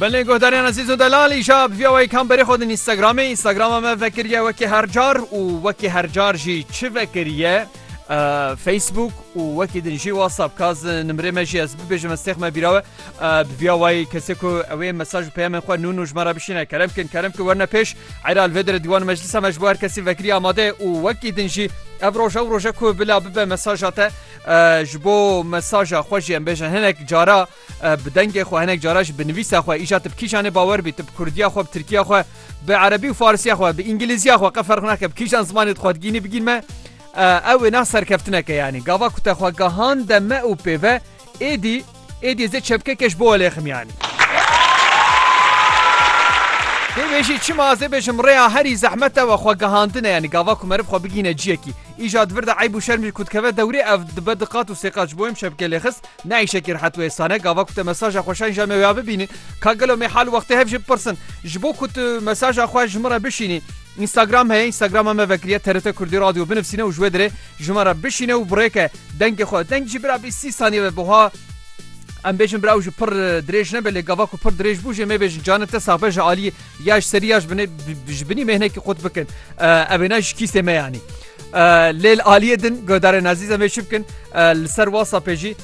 Belê guhdarên Ezîz û Delal îşa bi vîya wê kamberê xwe din Instagramê Instagrama me vekiriye wekî hercar û wekî hercar jî çi vekiriye Facebook û wekî din jî WhatsApp kaz nimrê me jî ez bibêjim ez têxme bîrawe bi vîya wê kesê ku ew ê mesaj û peyamên xwe nûn û ji me re bişîne kerem kin kerem ki werne pêş heyra li vê dire dîwan meclisa me ji bo her kesî vekirî amade û wekî din jî ev roj ew roje ku bila bibe mesaja te ji bo mesaja xwe jî em bêjin hinek cara bi dengê xwe hinek cara ji bi nivîsa xwe îja tu bi kîjan ê bawer bî tu bi kurdiya xwe bi tirkiya xwe bi erebî û farisiya xwe bi îngilîziya xwe qe ferq nake bi kîjan zimanê xwe digînî bigîn me ew wêna serkeftineke yanî gava ku te xwe gehande me û pêve êdî Êdî zê çepkeke ji bo welê ximiyanî. Tê bêjî çima ez ê bêjim rêya herî zehmet ew e xwe gihandin e yanî gava ku meriv xwe bigîne ciyekî. Îja di vir de eyb û şerm jî ku dikeve dewrê ev dibe di qat û sê qat ji bo em çepke lê xist ne îşekî rehet û êsan e gava ku te mesaja xwe şayîn ja me wêya bibînî ka gelo me hal û wextê hev jê bipirsin ji bo ku tu mesaja xwe ji min re bişînî Instagram heye Instagrama me vekiriye TRT Kurdî Radio binivîsîne û ji wê dirê Ji me re bişîne û birêke dengê xwe. Deng jî bira bîst sî saniye be buha. Em bêjin bira ew jî pir dirêj nebe lê gava ku pir dirêj bû jê mêê bêjin canê te saxbe ji aliyê ya ji serî ya ji binê ji binî mêhnekî qut bikin. Evê ne ji kîsê me yanî. Lê li aliyê din guhdarên ezîz em ê çi bikin li ser wasapê jî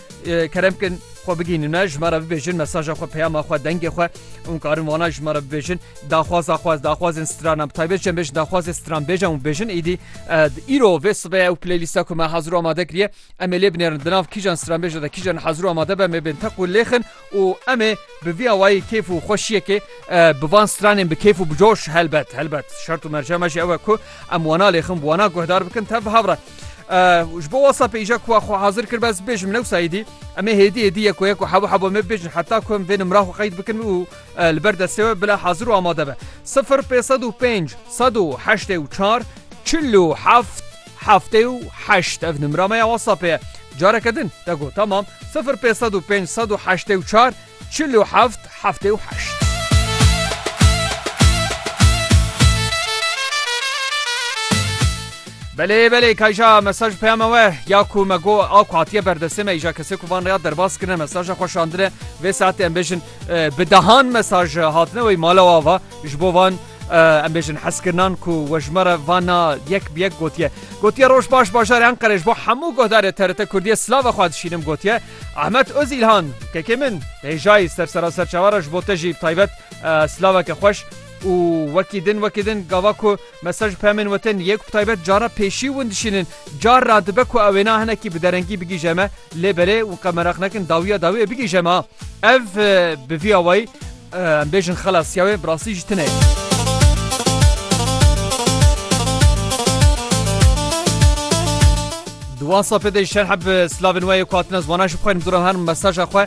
kerem bikin xwe bigihînin me ji me re bibêjin mesaja xwe peyama xwe dengê xwe. Hûn karin wana ji me re bibêjin daxwaza xwe ez daxwazên stranan bi taybet jî em bêjin daxwazê stran bêjin û bêjin êdî îro vê sibê ew playlîsta ku me hazir û amade kiriye em ê lê binêrin di nav kîjan stranbêje de kîjan hazir û amade be em ê bên teq û lêxin û em ê bi vî awayî kêf û xweşiyekê bi van stranên bi kêf û bi coş helbet helbet şert û merca me jî ew e ku em wana lêxin wana guhdar bikin tev bi hev re ji bo wasa pêja ku xwe hazir kir bes bêj min ewsa êdî em ê hêdî hêdî yek yek û hebo hebo me bêjin heta ku em vê nimra xwe qeyd bikin û li ber destê we bila hazir û amade be sifir pê sed û pênc sed û heştê û çar çil û heft heftê û heşt ev nimra me ya wasapê ye careke din te got tamam sifir pê sed û pênc sed û heştê û çar Çil û heft, heftê û heşt. Belê belê kayja mesaj peyama we ya ku me go a ku hatiye berdestê me îja kesê ku van rêya derbas kirine mesaja xwe şandine vê saetê em bêjin bi dehan mesaj hatine wey mala wa va ji bo van em bêjin heskirinan ku wejmere vana yek bi yek gotiye gotiye roj baş bajarê Enqerê ji bo hemû guhdarê TRT Kurdiye silava xwe dişînim gotiye Ahmet Ozîlhan, Kekê min, hêjayî ser sera ser çawa re ji bo te jî bi taybet silaveke xweş û wekî din wekî din gava ku mesaj pemên we tên yê ku bi taybet cara pêşî win dişînin car ra dibe ku ew wêna hinekî bi derengî bigîje me lê belê win qe meraq nekin dawiya dawiyê bigîje me ev bi vî awayî Em bêjin xelasiya wê bi rastî jî tune ye. Di wan safê de şerhe bi silavên we yê ku hatine ziwana ji bixwerin dûra herin mesaja xwe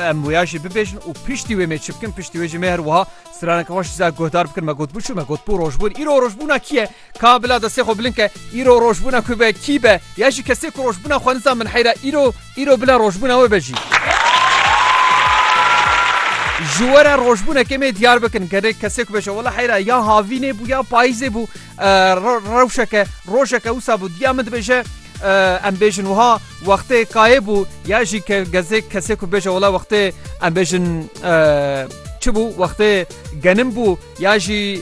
em wêya jî bibêjin û piştî wê mêçi bikin piştî wê jî mêr wiha straneke xweş zî guhdar bikin me gotbû çû me gotbû rojbûn îro rojbûna kî ye Ka bila destê xwe bilind ke îro rojbûna ku be kî be ya jî kesê ku rojbûna xwe nizan min heyra îro îro bila rojbûna we be jî. Ji we re rojbûnekê mê diyar bikin gerê kesê ku beje wela heyra ya havînê bû ya payîzê bû rewşeke rojeke wisa bû diya min dibêje em bêjin wiha wextê kayê bû ya jî ke gezê kesê ku bêje wela wextê em bêjin çi bû wextê genim bû ya jî